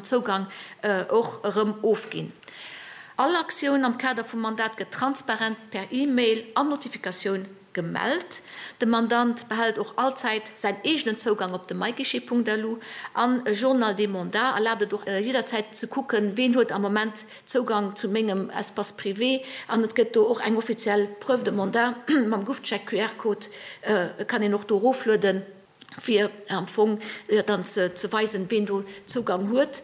Zougang och erëm ofginn. All Aktioun am Kader vum Mandat gëtt transparent per E-Mail an Notifikatioun gemellt. De Mandant behält och all Zäit säin eegenen Zougang op de myguichet.lu an e Journal des mandats erlaabt et och jidderzäit ze kucken, ween huet am Moment Zougang zu mengem Espace privé an et gëtt do och eng offiziell Preuve de mandat mam GovCheck-QR-Code, kann een och do eroflueden. fir am Fong dann ze weisen, ween do Zougang huet.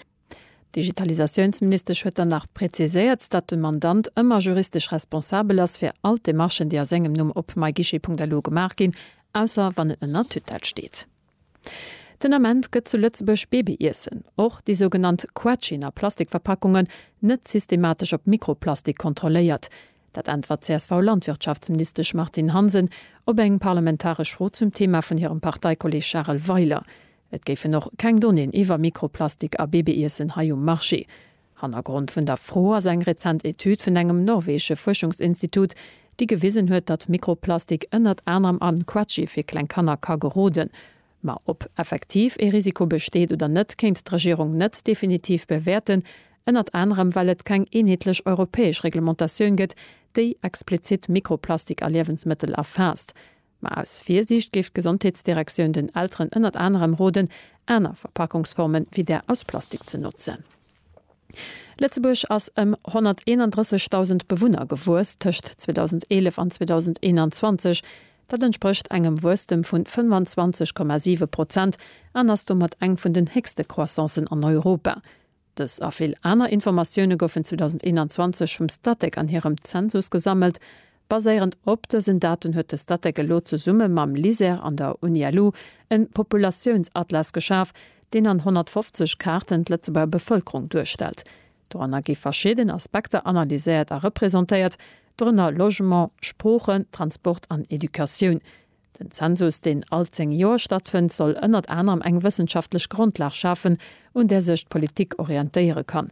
D'Digitalisatiounsministesch huet dann nach präziséiert, datt de Mandant ëmmer juristesch responsabel ass fir all d'Demarchen, déi a sengem Numm op myguichet.lu gemaach ginn, ausser wann en ënner Tutelle steet. Den Ament gëtt zu Lëtzebuerg Babyiessen, och déi sougenannt Quetschen a Plastikverpackungen, net systematesch op Mikroplastik kontrolléiert. Dat äntwert d'CSV-Landwirtschaftsministesch Martine Hansen op eng parlamentaresch Fro zum Thema vun hirem Parteikolleeg Charel Weiler. Et géifen och keng Donnéeën iwwer Mikroplastik a Babyiessen hei um Marché. Hannergrond vun der Fro ass eng rezent Etüd vun engem norweesche Fuerschungsinstitut, déi gewisen huet, datt Mikroplastik ënnert anerem an Quetschi fir kleng Kanner ka geroden. Ma ob effektiv ee Risiko besteet oder net, kéint d'Regierung net definitiv bewäerten, ënnert anerem well et keng eenheetlech europäesch Reglementatioun gëtt, déi explizitt Mikroplastik a Liewensmëttel erfaasst. Ma aus Virsiicht géif d'Gesondheetsdirektioun den Elteren ënnert anerem roden, aner Verpackungsformen wéi där aus Plastik ze notzen. Lëtzebuerg ass ëm 131.000 Bewunner gewuess tëscht 2011 an 2021. Dat entsprécht engem Wuesstem vu 25,7 Prozent an ass domat eng vun den héchste Croissancen an Europa. Dës a vill aner Informatioune goufen 2021 vum Statec an hirem Zensus gesammelt, Baséierend op dësen Daten huet de Statec elo zesumme mam LISER an der Uni-LU e Populatiounsatllas geschaf, deen an 150 Kaarten d'Lëtzebuerger Bevëlkerung duerstellt. Doranner gi verschidden Aspekter analyséiert a representéiert, dorënner Logement, Sproochen, Transport an Educatioun. Den Zensus, deen all zéng Joer stattfënnt, soll ënnert anerem eng wëssenschaftlech Grondlag schafen, un där sech d'Politik orientéiere kann.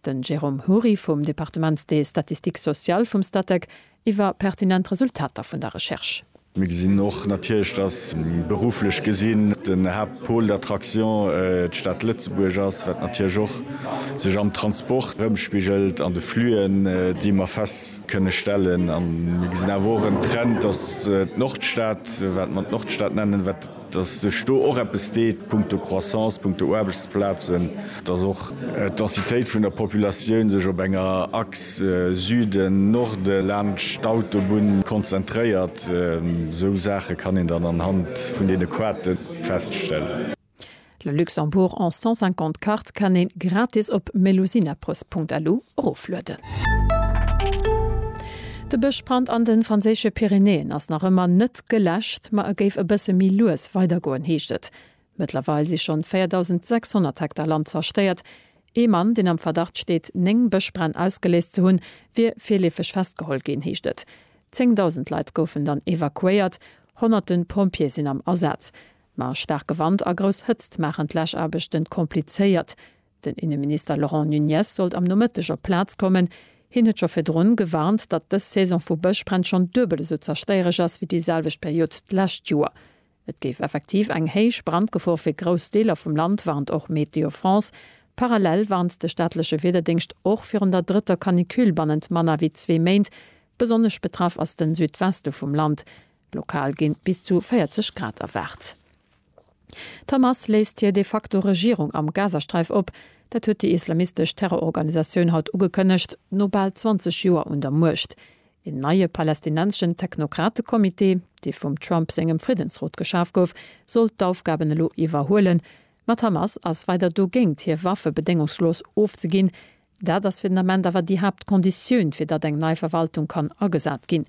Den Jérôme Houry vum Départements des Statistiques Sociales vum Statec iwwer pertinent Resultater vun der Recherche. Mir gesinn och natierlech, dass berufflech gesinn den Haaptpôle d'attraction d'Stad Lëtzebuerg ass, wat natierlech och sech am Transport erëmspigelt, an de Flüen, déi mer fest kënne stellen. A mir gesinn awer och en Trend, dass d'Nordstad, wat mer d'Nordstad nennen, wat. dass sech do och eppes deet punkto Croissance, punkto Aarbechtsplazen, dass och d'Densitéit vun der Populatioun sech op enger Achse Süden-Norde laanscht d'Autobunn konzentréiert. Esou Saache kann een dann anhand vun deene Quote feststellen. Le Luxembourg en 150 Carte kann een gratis op melusinappress.lu eroflueden. De Bëschbrand an de franséische Pyrenäen ass nach ëmmer net geläscht, ma e géif e bësse méi lues weidergoen, heescht et. Mëttlerweil si schonn 4.600 Hektar Land zerstéiert. Ee Mann, deen am Verdacht steet, néng Bëschbränn ausgeléist ze hunn, wier virleefeg festgeholl ginn, heescht et. Zéngdausend Leit goufen dann evakuéiert. Honnerte Pompjeeë sinn am Asaz. Ma staarke Wand a grouss Hëtzt maachen d'Läschaarbechten komplizéiert. Den Inneminister Laurent Nunez sollt am Nomëtteg op d'Plaz kommen. Hien huet scho virdrun gewarnt, datt dës Saison vu Bëschbränn schonn duebel esou zerstéiereg ass wéi déi selwecht Period d'lescht Joer. Et géif effektiv eng héich Brandgefor fir grouss Deeler vum Land, warnt och Météo France. Parallel warnt de staatleche Wiederdéngscht och virun der drëtter Canicule bannent manner wéi zwee Méint. Besonnesch betraff ass de Südweste vum Land. Lokal ginn bis zu 40 Grad erwaart. D'Hamas léist hir de facto Regierung am Gazasträif op. Dat huet déi islamistesch Terrororganisatioun haut ugekënnegt, no bal 20 Joer un der Muecht. Een neie palästinenseschen Technokrate-Comité, dee vum Trump sengem Friddensrot geschaf gouf, soll d'Aufgaben elo iwwerhuelen. Ma d'Hamas ass weider dogéint, hir Waffe bedéngungslos ofzeginn. Dat ass fir den Ament awer déi Haaptkonditioun, fir datt eng nei Verwaltung kann agesat ginn.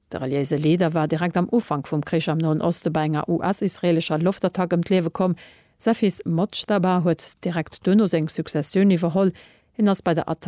De reliéise Leader war direkt am Ufank vum Krich am Noen Oste bei enger US-israeelescher Loftattack ëm d'Liewe komm. Säi Fils Mojtaba huet direkt duerno seng Successioun iwwerholl. Hien ass bei der Attack